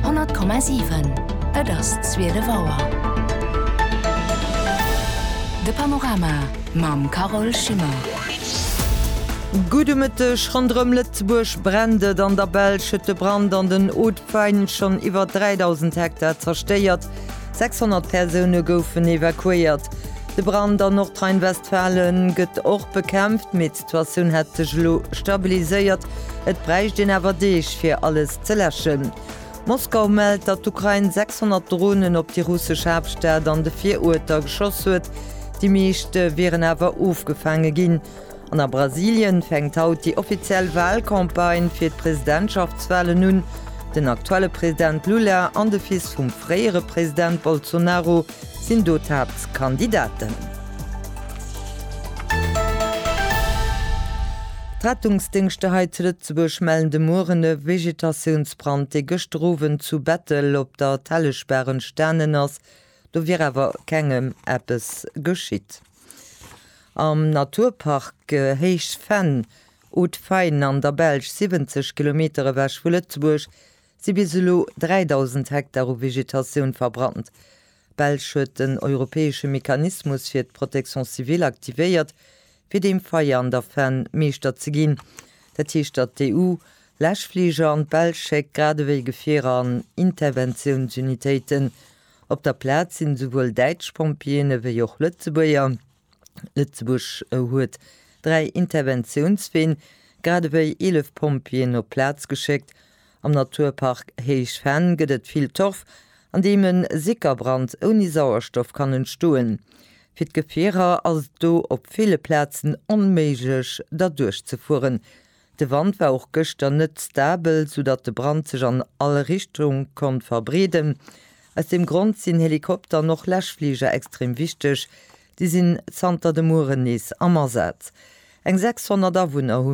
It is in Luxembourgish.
100,7 Et ass 12 Auer. De Panorama mam Carole Schimmer. Gudde Mëtteg. Ronderëm Lëtzebuerg brennt et. An der Belsch huet de Brand an den Hautes-Fagnes schonn iwwer 3.000 Hektar zerstéiert. 600 Persoune goufen evakuéiert. De Brand an Nordrhein-Westfalen gëtt och bekämpft, mee D'Situatioun hätt sech elo stabiliséiert, et bräicht een awer Deeg, fir alles ze läschen. Moskau mellt, datt d'Ukrain 600 Dronen op déi russesch Haaptstad an de Viruerter geschoss huet, déi meescht wieren awer ofgefaange ginn. An a Brasilien fänkt haut déi offiziell Walcampagne fir d'Presidentschaftswalen un. Den aktuelle President Lula an de Fils vum fréiere President Bolsonaro sinn do d'Haaptkandidaten. D'Rettungsdéngschter hei zu Lëtzebuerg mellen de Mueren e Vegetatiounsbrand, dee gëschter Owend zu Bettel op der Telleschbaach entstanen ass. Do wier awer kengem eppes geschitt. Am Naturpark Héichfenn, Hautes Fagnes, an der Belsch, 70 Kilometer ewech vu Lëtzebuerg, si bis elo 3.000 Hektar u Vegetatioun verbrannt. D'Belsch huet den europäesche Mechanismus fir d'Protection civile aktivéiert, fir deem Feier an der Fenn Meeschter ze ginn. Dat heescht, datt d'EU Läschfliger an d'Belsch schéckt, grad ewéi Gefierer an Interventiounsunitéiten. Op der Plaz sinn esouwuel däitsch Pompjeeën ewéi och Lëtzebuerger. Lëtzebuerg huet dräi Interventiounsween, grad ewéi 11 Pompjeeën op d'Plaz geschéckt. Am Naturpark Héich Venn gëtt et vill Torf, an deem e Sickerbrand ouni Sauerstoff kann entstoen. Fir d'Gefierer ass et do op ville Plazen onméiglech derduerch ze fueren. De Wand war och gëschter net stabel, sou datt de Brand sech an all Richtung konnt verbreeden. Aus deem Grond sinn Helikopter an och Läschfliger extrem wichteg. Déi sinn zanter de Mueren nees am Asaz. Eng 600 Awunner hu